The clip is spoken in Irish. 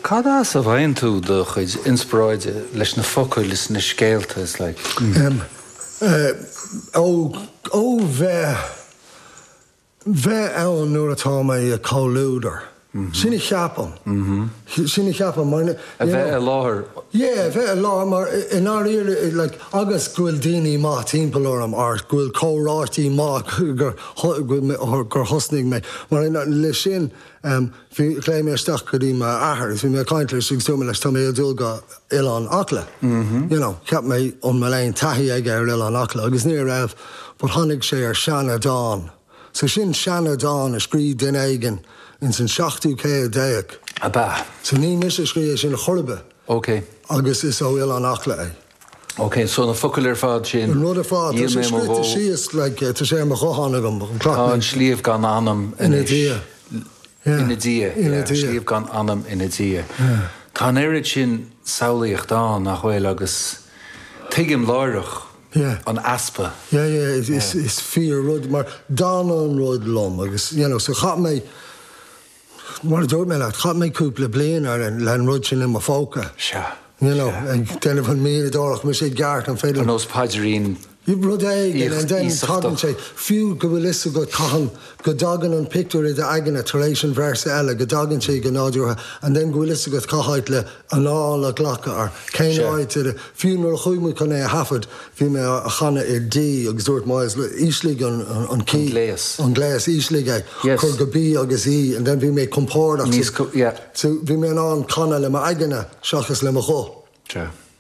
Cad as a bhfaigheann tú do chuid inspioráide leis na focail is na scéalta is like? Ó bheith bheith ann nuair atá mé i comhluadar. Sin a cheapaim. Sin a cheapaim mar you know. A bheith i láthair. Yeah, a bheith i láthair mar i ndáiríre like agus go bhfuil daoine maith timpeall orm or go bhfuil comhráití maith gur thosnaigh mé. Mar aon leis sin, ghlaoigh mé isteach go dtí m'athair agus bhí mé ag caint leis agus dúirt mé leis, tá mé ag dul go Oileán Acla. You know, cheap mé, an bhfuil aon taithí aige ar Oileán Acla agus ní raibh, but tháinig sé ar sheandán. So sin seandán a scrígh duine éigin ins an seachtú céad déag. Ab ea? So ní mise a scrígh é sin chor ar bith. Ok. Agus is ó Oileán Acla é. Ok, so na focail ar fad sin, An rud ar fad, tá sé scríte síos, like, tá sé ar mo ghuthán agam, an clock Tá an sliabh gan anam anois. Ina diaidh. Yeah. Ina diaidh, yeah. Ina diaidh. Sliabh gan anam ina diaidh. Yeah. Tá an oiread sin samhlaíocht ann, nach bhfuil, agus tuigim láithreach Yeah. an easpa. Yeah, yeah, is, is, is fíor rud, mar d'fhanadh an rud liom, agus, you know, so chaith mé Mar a dúirt mé leat, chaith mé cúpla bliain le an rud sin i mo phóca. Sea. You know, ag déanamh an mhianadóireacht, mise i gceart an féidir. Ar nós paidirín íosachta. Rud éigin, and then tagann sé, fiú go bhfuil 'fhios agat cathain go dtagann an pictiúr i d'aigne tar éis an véarsa eile, go dtagann sé go nádúrtha, and then go bhfuil 'fhios agat cá háit le, anáil a ghlacadh air. Cén Sure. áit ar a, fiú nuair a chuaigh muid chun é a thaifead, bhí mé á chanadh i D agus dúirt Myles, look, ísligh an, an, an key. gléas. An gléas, ísligh é. Yes. Cuir go B agus E and then bhí mé compordach. Níos, co- yeah. So bhí mé in ann canadh le m'aigne seachas le mo ghuth. Sure.